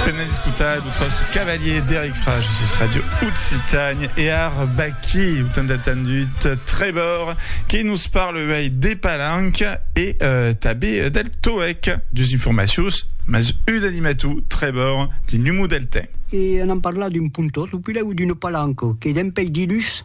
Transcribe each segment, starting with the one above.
Pena d'escotar d'autres cavaliers d'Eric Frage sus Radio Occitània e ar Baqui, lo tant atendut Trevor, que nos parle uèi de palanca e euh, tabé del TOEC. Dus informacions, mas un animator, Trevor, de Numo Deltain. E anam parlar d'un pontor, o puèi d'una palanca, que dempèi dilhus,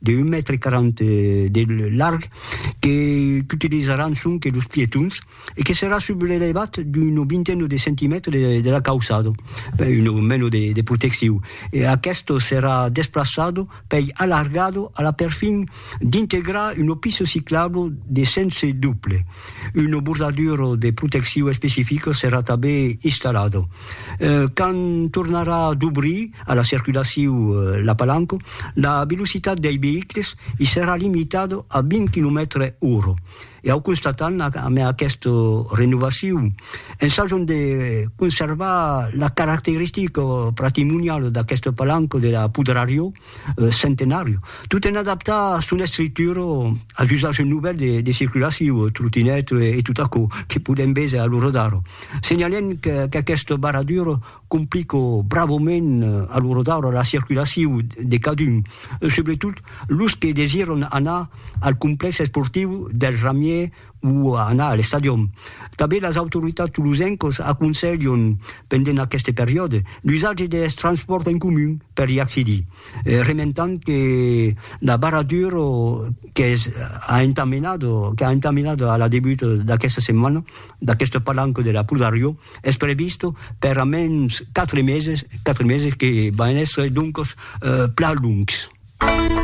de 1 mètre 40 de larg que qu'utilizaràn sonque los pietons e que serà sub l'elevat d'una vintena de centimètres de de la cauçada, una mena de de proteccion. E aqueste serà desplaçat pei alargado a la perfin d'integrar una pista ciclabla de sens doble. Una bordadura de proteccion especifica serà tanben installada. Quand tornarà dobrir a la circulaciu la palanca, la velocitat dei veïcles i serà limitada a 20 quilomètres ora. E au constatam amé aquesta renovaciu, ensajam de conservar la caracteristica patrimoniala d'aquesta palanca de la Pudrariò, Centenàriu, tot en adaptar son estructura als usatges novèls de, de circulaciu, trotinèt e tot aquò que podèm véser a lo Rodar. Senhalèm que, qu'aquesta barradura complica bravament a lo Rodar la circulaciu de cadun, subretot los que desiràn anar al complèx esportiu dels Ramiers, o a anar a l'estadion. Tanben las autoritats tolosencas aconselhan, pendent aqueste periòde, l'usatge deth transpòrt en comun per i accedir, rementant que la barradura qu'es a entamenat, qu'a entamenat a la debut d'aquesta setmana, d'aquesta palanca de la Pudariò, es prevista per a mens quatre meses, quatre meses que van èsser doncas plan lungs.